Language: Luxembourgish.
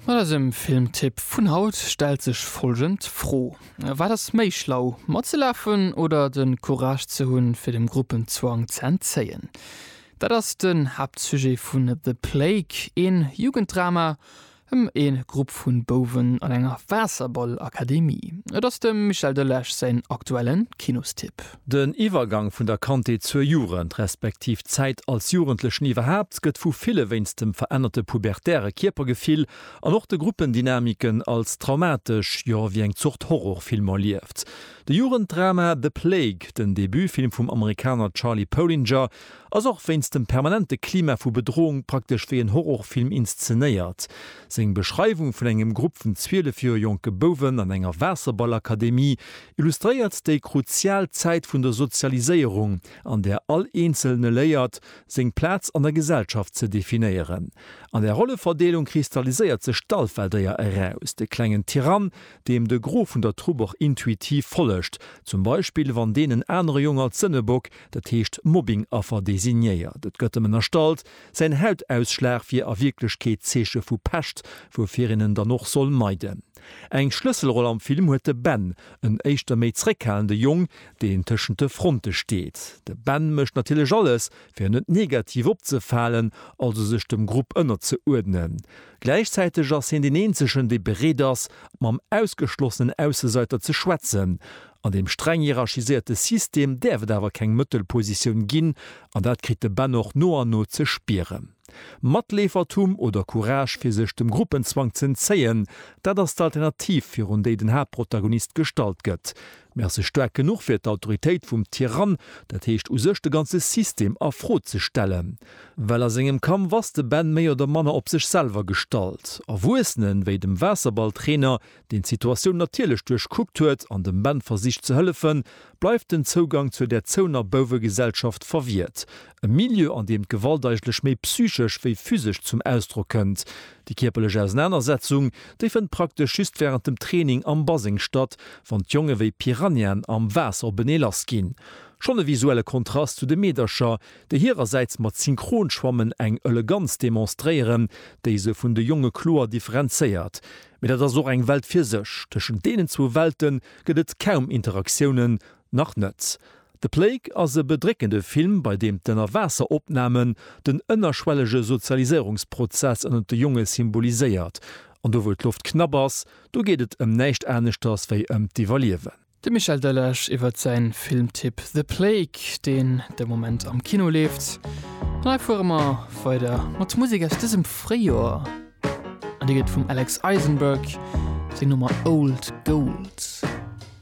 Mat eisem Filmtipp vun haut stellt sech folgend Fro, Wat ass méi schlau, matzelafen oder de Courage ze hunn fir dem Gruppenzwang ze entzéien? Dat ass den Haaptsujet vun The Plague, een Jugenddrama em ee Grupp vun Bouwen an enger Waasserballakademie. Et ass dem Michel Delage säin aktuellen Kinostipp. Den Iwwergang vun der Kandheet zur Jugend, respektiv d'Zäit als Jugendlechen iwwerhaapt, gëtt vu ville wéinst dem verännerte pubertäre Kierpergefill an och de Gruppendynamiken als traumatesch, jo wéi eng Zort Horrorfilm erlieft. De Jugenddrama The Plague, den Debutfilm vum Amerikaner Charlie Polinger, ass och wéinst dem permanente Klima vu Bedroung praktesch wéi en Horrorfilm inszenéiert. Seng Beschreiwung vun engem Grupp vun 12 Joer jonke Bouwen an enger Waasserballakademie illustréiert déi kruzial Zäit vun der Sozialiséierung, an där all Eenzelne léiert, seng Plaz an der Gesellschaft ze definéieren. An där Rolleverdeelung kristalliséiert sech d'Alpha-Déier eraus, de klengen Tyrann, deem de Gros vun der Trupp och intuitiv follegt, zum Beispill wann deen en anere Jong als Sënnebock, dat heescht Mobbing-Affer, designéiert. Et gëtt em ënnerstallt, säin Hautausschlag wier a Wierklechkeet d'Zeeche vu Pescht, woufir een en dann och soll meiden. Eng Schlësselroll am Film huet de Ben, en éischter méi zréckhalende Jong, deen tëschent de Fronte steet. De Ben mécht natierlech alles, fir net negativ opzefalen, also sech dem Grupp ënnerzeurdnen. Gläichzäiteg ass hien deen eenzegen, dee bereet ass, mam ausgeschlossenen Ausseseiter ze schwätzen. An deem streng hierarchiséierte System däerf et awer keng Mëttelpositioun ginn, an dat kritt de Ben och no an no ze spieren. Matleefertum oder Courage fir sech dem Gruppenzwang z'entzéien, dat ass d'Alternativ virun déi den Haaptprotagonist gestallt gëtt. Mee ass e staark genuch fir d'Autoritéit vum Tyrann, dat heescht u sech de ganze System a Fro ze stellen? Well a sengem Kampf ass de Ben méi oder manner op sech selwer gestallt. Erwuessenen, wéi dem Waasserballtrainer, deen d'Situatioun natierlech duerchkuckt huet an dem Ben versicht ze hëllefen, bleift den Zougang zur derzouener Bouwegesellschaft verwiert. E Milieu, an deem d'Gewalt eigentlech méi psychesch wéi physesch zum Ausdrock kënnt. Déi kierperlech Ausenanersetzung, déi fënnt praktesch just wärend dem Training am Baseng statt, wann d'Jonge wéi Piranhaen am Waasser openee lass ginn. Schonn e visuelle Kontrast zu de Meedercher, déi hirersäits mat Synchronschwammen eng Eleganz demonstréieren, déi se vun de Jonge kloer differenzéiert. Mee dat ass och eng Welt fir sech. Tëschent deenen zwou Welte gëtt et kaum Interaktiounen, nach net. The Plague ass e bedréckende Film, bei deem d'Ënnerwaasseropnamen den ënnerschwellege Sozialiséierungsprozess ënnert de Jonge symboliséiert. An do wou d'Loft knapp ass, do geet et ëm näischt aneschters wéi ëm d'Iwwerliewen. De Michel Delage iwwert säin Filmtipp The Plague, deen de Moment am Kino leeft. An hei fuere mer weider mat Musek aus dësem Fréijoer. An déi gëtt vum Alex Eisenberg seng Nummer Old Gold.